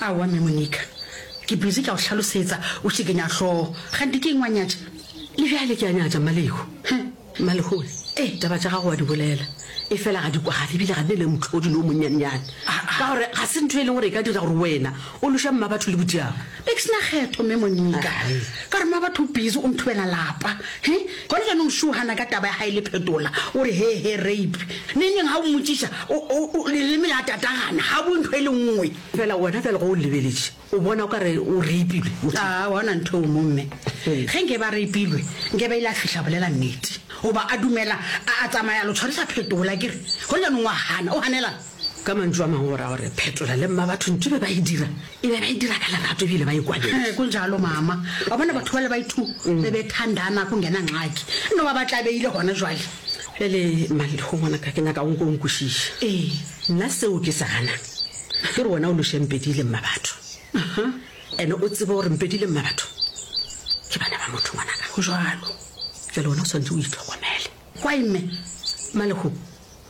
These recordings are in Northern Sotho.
Aowa, Mme Monica. Ke busy ke a go hlalosetsa, o šikenya hlogo. Kganthe ke eng wa nyatša? Le bjale ke a nyatša, Mmalehu. Heh, Mmalehoe. Ee, taba tša gago wa di bolela, efela ga di kwagale ebile ga di na le mohlodi le o monnyanenyane. Ka gore ga se ntho e leng gore e ka dira gore wena o loše mmabatho le bodiaba. Nix na kgeto me Monika. Ka re ma batho o busy o nthubela lapa. He? Gona janong Shu hana ka taba ya hae le phetola. O re he he rape. Neng neng ha o mmotsisa o o o leleme la tatagana ha bue ntho e le nngwe. Fela wena bjale ge o lebeletše o bona o ka re o rape-ilwe motho. Aa wa bona ntho eo mo mme. Ge nke ba rape-ilwe nke ba ile a fihla bolela nnete. Goba a dumela a a tsamaya lo tshwarisa phetola ke re. Gona janong wa hana o hanelana. Ka mantšu a mangwe go ra gore Phetola le Mmabatho ntho e be ba e dira e be ba e dira ka lerato e bile ba e kwaletše. Ee, kunjalo mama. Wa bona batho bale bai two be be thandana kungena ngxaki. No ba ba tlabeile gona jwale. Bjale Maliho ngwanaka ke nyaka o nke o nkwešiše. Ee. Nna seo ke se ganang ke gore wena o loše Mpedi le Mmabatho. Ene o tsebe gore Mpedi le Mmabatho ke bana ba motho ngwanaka. Go jwalo. Bjale wena o swanetše o itlhokomele. Kwae mme. Maliho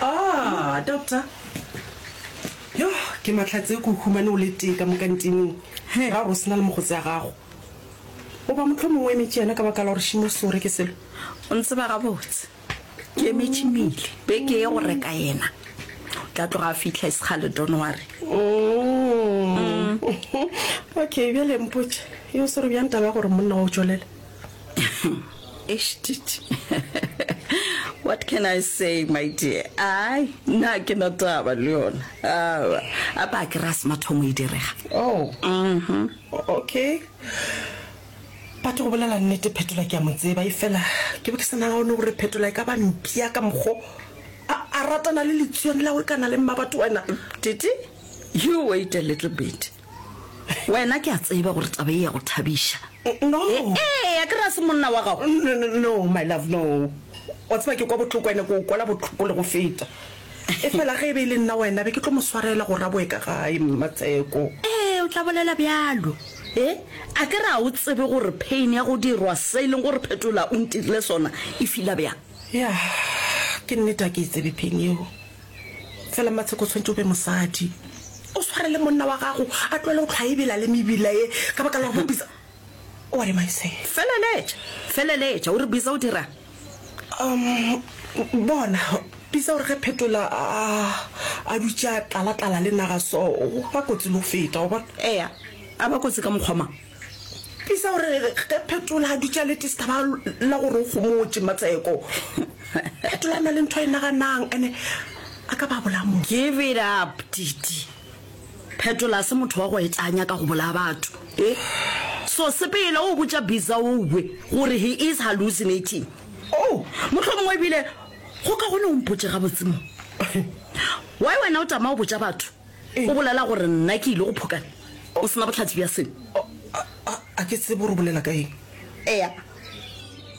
Ah, doctor yo ke matlhatse ko humane o le tee ka mo kantineng ga gore o sena le mogotse ya gago o ba motlho mongwe emetše yena ka baka la gore šimo sore ke selo o ntse ba gabotse ke emetše mele be ke ye go reka yena o tla tloga a fitlha e sekgale donware Mm. okay bjale mpotše yo sore bjang taba ya gore monna wa o tšwelela Eshtiti. What can I say, my dear? Ai, na ke na taba le yona. Awa, a ba ke ra se mathomo e direga. Oh. Mhm. Okay. Batho go bolela nnete phetola ke a mo tseba e fela ke bo ke sa nagone gore phetola e ka ba mpia ka mokgo a a ratana le letsuane la go kana le mmabatho wena Titi, you wait a little bit. Wena ke a tseba gore taba e ya go thabiša. No. Eya, ke ra se monna wa gago. No, no, no, my love, no. Wa tseba ke kwa botloko ene ke o kwala botloko le go feta. E fela ge e be e le nna wena be ke tlo mo swarela go raboe ka gae, Mmatsheko. Ee, o tla bolela bjalo. E, a ke ra o tsebe gore pain ya go dirwa se e leng gore Phetola o ntirile sona e fila bjang? Ya, ke nnete a ke e tsebe pain yeo. Fela Matsheko o tshwanetse o be mosadi o sware le monna wa gago a tloele go tlhwa ebela le mebila ye ka baka la gore Biza What am I saying? Feleletša, feleletša, o re Biza o dirang? Um, bona, Biza o re ge Phetola a, a dutše a tlala-tlala le naga so, o ba kotsi le go feta, wa bona. Eya, a ba kotsi ka mokgwa mang? Tlisa gore ge Phetola a dutše a le tista ba la gore o gomotše matseko. Phetola a na le ntho a e naganang ene a ka ba bolaya motho. Give it up, Titi. Phetola a se motho wa go etša a nyaka go bolaya batho. E? So sepele o botša Bizaoue gore he is hallucinating. Oh, mohlomongwe ebile go ka gone o mpotše gabotse mo. Why wena o tama go botša batho? O bolela gore nna ke ile go phoka o se na bohlatse bja selo? A ke tsebe gore o bolela ka eng. Eya,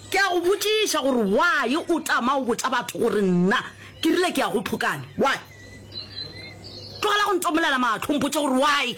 ke a go botšiša gore why o tama go botša batho gore nna ke rile ke ya go phokane. Why? Tlogela go ntomolela mahlo o mpotše gore why.